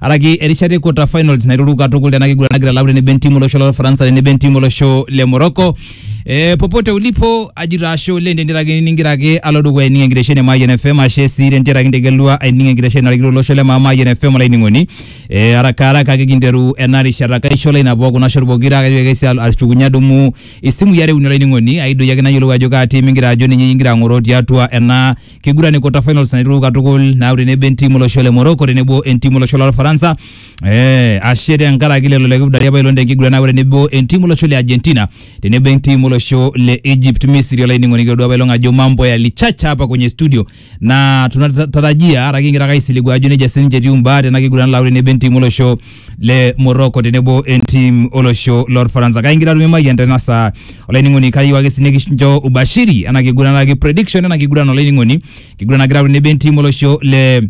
araki erishata e quarter finals nairuru katukul tena kiguran nagira alau tenebo entimu olosho lo Ufaransa tenebo entimu olosho le Morocco. Eh, popote ulipo ajito ashe oleng tenteraki ningira ake alo dukuya aining enkitesheni e Mayian FM ashe sii tenteraki integelua aining enkitesheni narikito olosho le maa Mayian FM olainining'oni. Eh, haraka haraka ake kinteru ena rishata kaisho lai nabo kuna shot pokira kaitoki ake sii alo- ashukunye adumu isimui are uni olainining'oni aidoyio ake nayiolou ajo kaa tim ingira ajo ninye ingira ang'oroo tiatua ena kiguran e quarter finals naiteru katukul naaku tenebo entiim olosho le Morocco tenebo entiim olosho lolfaransa eh, ashe tenkaraki lelo le kipdari apailong tenkiguran naaku tenebo entiim olosho le Argentina tenebo entiim olosho le Egypt Misri olainining'oni kiodua apailong ajo mambo yalichacha hapa kwenye studio na tunatarajia ara kingira ake aisiligua ajo nejia sininche etiu imbaa tena kiguran naaku tenebo entiim olosho le Morocco tenebo entim olosho lorfaransa kake ingira atum emayian tena saa olainining'oni kayieu ake sii nikincho ubashiri ena kiguran ake prediction ena kiguran olainining'oni kiguran nagira atum tenebo entim olosho le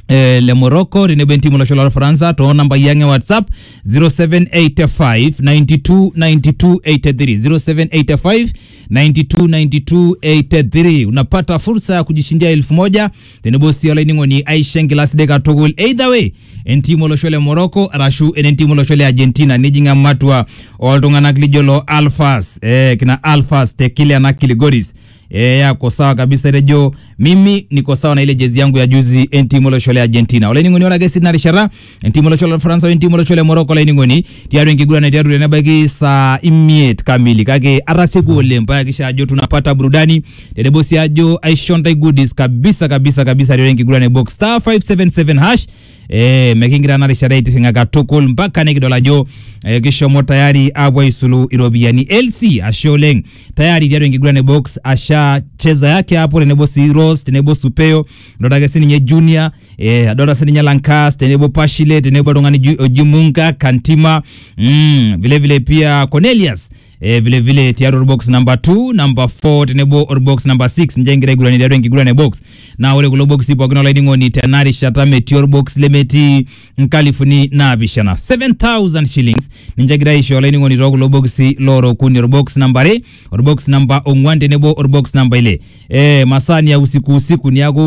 eh, le Morocco tenebo entim olosho lorfaransa too nambai ang e whatsapp 0785929283 0785929283 unapata fursa ya kujishindia elfu moja tenebo sii olainining'oni aisho enkila sidai katukul either way entiim olosho le Morocco arashu enentiim olosho le Argentina nijing ematua oltung'anak lijo loo Alfas eh, kina Alfas te kile na Kiligoris eh, yako sawa kabisa etejo mimi niko sawa na ile jezi yangu ya juzi entiim olosho le Argentina olainining'oni ore ake sii tina rishata entimu olosho le Ufaransa wentimu olosho le Morocco laining'oni tiatua enkiguran naiteru tenebaiki saa imiet kamili kake atasieku oleng paa kisha ajo tunapata burudani tenebo sii ajo aisho ntae goodies kabisa kabisa kabisa tiatua enkiguran e box star 577 hash eh, mekingira ena rishata aitirring'a katukul mpaka nikidol ajo eh, kishomo tayari apuo aisulu iropiyiani LC ashe oleng tayari tiatua enkiguran e box asha cheza yake hapo tenebo sii Rose tenebo Supeo Adolta ake sininye Junior, eh, adolta sininye Lankas tenebo Pashile tenebo oltung'ani Ju- oji Munga, Kantima, mm, vile vile pia Cornelius eh, vile vile tiatua orbox number 2 number 4 tenebo orbox number 6 nje ngira aigurani tiatua enkiguran e box naa ore kulo boxi pookin olainining'oni tena rishata metii orbox lemetii nkalifuni naapishana 7000 shillings ninche egira aisho olainining'oni too kulo boxi loora okuni orbox namba are orbox namba ong'uan tenebo orbox namba ile eh, masaa ni ya usiku usiku niaku